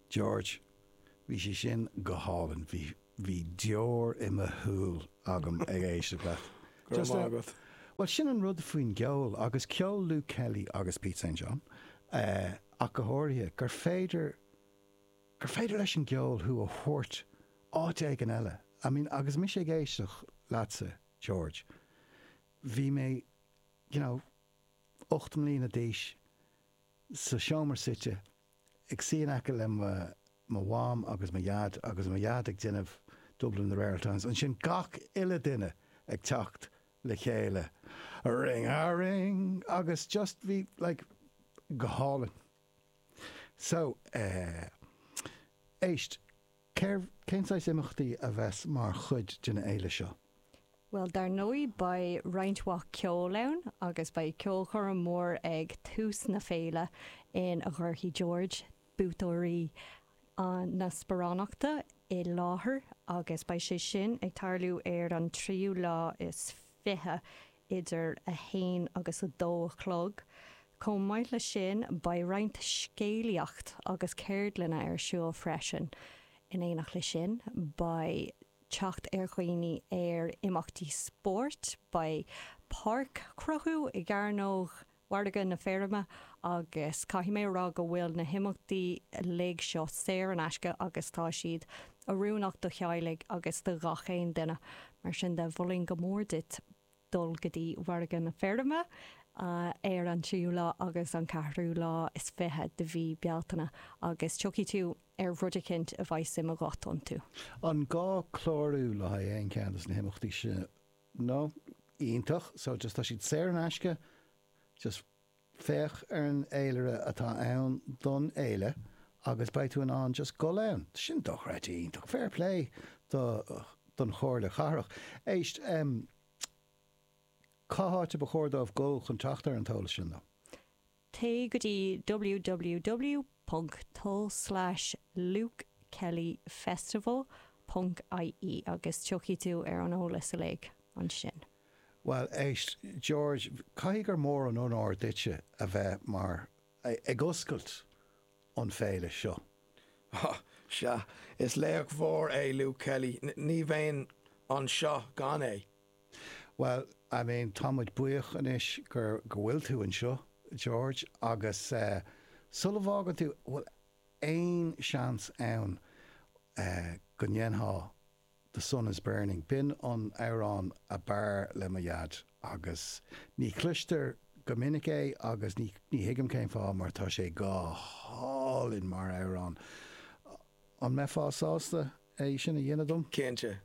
George, Bhí sé sin go hálainn. Bhí, bhí deor i mo shúil agam ag éisteacht leat. Go raibh maith agat. Bhuel, sin an rud faoin gceol, agus ceol Luke Kelly agus Pete St. John ach go háirithe, gur féidir, gur féidir leis an gceol thú a thabhairt áit éigin eile. I mean, agus mise ag éisteacht leatsa, George, bhí mé, you know, ocht mbliana d'aois, sa seomra suite, ag suí in aice le mo Mham agus mo Dhaid agus mo Dhaid ag déanamh Dublin in the Rare Ould Times, ansin gach uile duine ag teacht le chéile a ring a ring agus just bhí sé like go hálainn. So, eh, éist. Cérbh, cén saghas imeachtaí a bheas mar chuid den fhéile seo? Bhuel, dar ndóigh beidh roinnt mhaith ceoil ann agus beidh ceolchoirm mhór ag tús na féile ina gcuirfidh George buaiteoirí na sparánachta i láthair agus beidh sé sin ag tarlú ar an tríú lá is. 20, idir 1 agus 2 a chlog. Chomh maith leis sin, beidh roinnt scéalaíocht agus ceardlanna ar siúl freisin. In éineacht leis sin, beidh teacht ar dhaoine ar imeachtaí spóirt, beidh páirc cruthú i gCearnóg mhargadh na feirme agus caithfidh mé a rá go bhfuil na himeachtaí uilig seo saor in aisce agus tá siad oiriúnach do theaghlaigh agus do ghach aon duine. Mar sin de, molfainn go mór duit dul go dtí Margadh na Feirme ar an tríú lá agus an ceathrú lá is fiche de mhí Bealtaine agus tiocfaidh tú ar rud eicínt a bheidh suim agat iontu. An gá clárú le haghaidh aon cheann de na himeachtaí seo? no, iontach, so just tá siad saor in aisce, just féach ar an fhéilire atá ann don fhéile agus beidh tú in ann just gul ann. Tá sin dochreidte iontach. Fair play do, don Chomhairle Cathrach. Éist, em, cá háit a ba chóir dóibh gul chun teacht ar an t-eolas sin, though? Téigh go dtí www.tul/lukekellyfestival.ie agus tiocfaidh tú ar an eolas uilig ansin. Bhuel, éist, George, caithfidh gur mór an onóir duitse a bheith mar, ag oscailt an Féile seo. Ó, sea, is laoch mhór é Luke Kelly, ní bheinn anseo gan é. Bhuel, I mean, tá muid buíoch anois gur, go bhfuil tú anseo, George, agus eh, sula bhfágann tú, bhfuil aon seans ann eh, go ndéanfá The Sun Is Burning, b'in an t-amhrán a b'fhearr le mo dhaid agus ní chloistear go minic é agus ní, ní thuigim cén fáth mar tá sé go hálainn mar amhrán, an mbeifeá sásta é sin a dhéanamh dom? Cinnte.